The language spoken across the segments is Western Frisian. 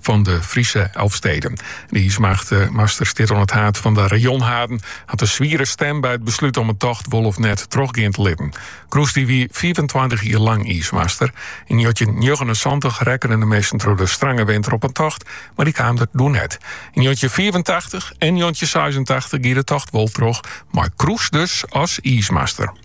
fan de Friese Elfsteden. De iismacht eh, master stiet oan it haad fan de rajonhaden, hat in swiere stem by it beslút om in tocht wol of net trochgean te litten. Kroes dy wie 25 jier lang iismaster. Yn 1979 rekkenen de measten troch de strange winter op in tocht, mar dy kaam der doe net. Yn 1985 en 1986 gie de tocht wol troch, mei Kroes dus as iismaster.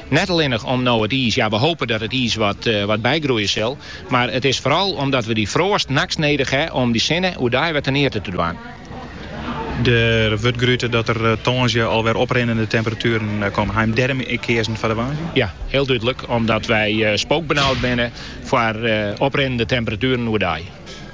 Net allinnich om no it iis, ja, we hope dat it iis wat bygroeie sil, mar it is foaral omdat we dy froast nachts nedich ha om dy sinne oerdei wer teneate te dwaan. Der wurdt grute dat der tongersdei al wer oprinnende temperatueren komme. Ha jim dêrom keazen foar de woansdei? Ja, hiel dúdlik, omdat wy spookbenaud binne foar oprinnende temperatueren oerdei.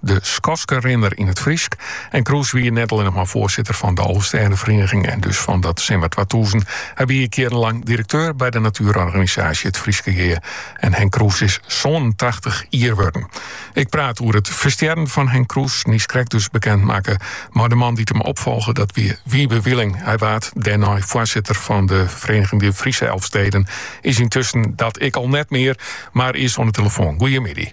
de Skoskerinner yn it Frysk. En Kroes wie net allinnich mar foarsitter fan de Alvestêdefereniging en dus fan dat Simmer 2000. Hy wie jierrenlang direkteur by de natuerorganisaasje It Fryske Gea. En Henk Kroes is 87 jier wurden. Ik praat oer it ferstjerren fan Henk Kroes, nys krekt dus bekend makke, mei de man dy't him opfolge, dat wie Wiebe Wieling. Hy waard dêrnei foarsitter fan de Vereniging de Friese Elfsteden, is yntusken dat ek al net mear, mar is oan de telefoan. Goeiemiddei.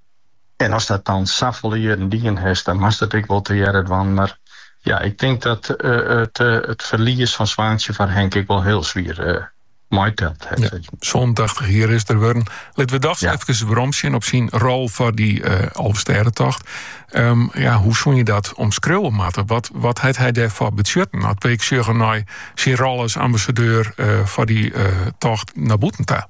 En as dat dan safolle jierren dien hast, dan moatst it ek wol tegearre dwaan. Mar ja, ik tink dat it ferlies fan Swaantsje foar Henk ek wol hiel swier meiteld hat. Sânentachtich jier is er wurden. Litten we dochs efkes weromsjen op syn rol foar dy Alvestêdetocht. Ja, hoe soene je dat omskriuwe moatte? Wat, wat hat hy dêrfoar betsjutten? As we ek sjogge nei syn rol as ambassadeur foar dy tocht nei bûten ta.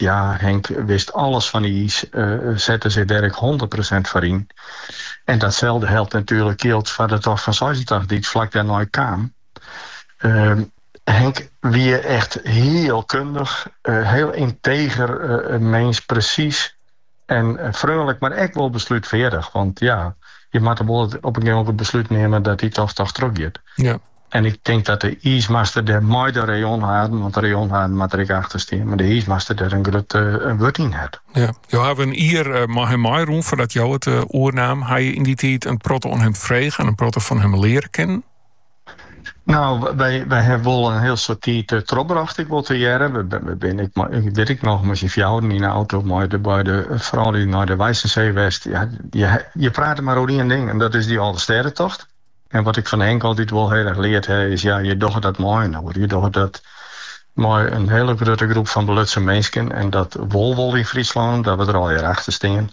Ja, Henk wist alles fan iis, sette sich der ek hûndert prosint foar yn. En datselde geldt natuerlik, jildt foar de tocht fan seisentachtich dy't flak dêrnei kaam. Henk wie echt hiel kundich, hiel ynteger mins, presys en freonlik, mar ek wol beslútfeardich. Want ja, je moatte wol op in gegeven moment it beslút nimme dat dy tocht dochs trochgiet. Ja. En ik tink dat de iismaster dêr mei de rajonhaden, want de rajonhaden moatte der ek achter stean, mar de iismaster dêr in grut wurd yn hat. Ja, jo hawwe in jier eh, mei him meirûn foardat jo it eh, oernaam. Ha je yn dy tiid in protte oan him frege en in protte fan him leare kinnen? No, wy, wy ha wol in hiel soad tiid uh, eh, trochbrocht, ek wol tegearre. We, we binne ek, wit ik noch, mei syn fjouweren yn de auto, mei de, beide, eh, froulju nei de Weissensee west. Ja, je, je prate mar oer ien ding, en dat is dy Alvestêdetocht. En wat ik fan Henk altyd wol hiel erch leard ha is, ja, je dogge dat mei inoar. Je dogge dat mei in hiele grutte groep fan belutsen minsken en dat wol wol yn Fryslân dat we der allegear achter stean.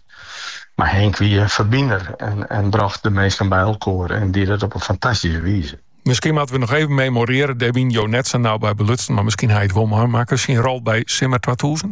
Mar Henk wie in ferbinder en brocht de minsken by elkoar en die dat op in fantastyske wize. Miskien moatte we noch even memorearje, dêr wiene jo net sa nau by belutsen, mar miskien ha je it wol meimakke, syn rol by Simmer twatûzen?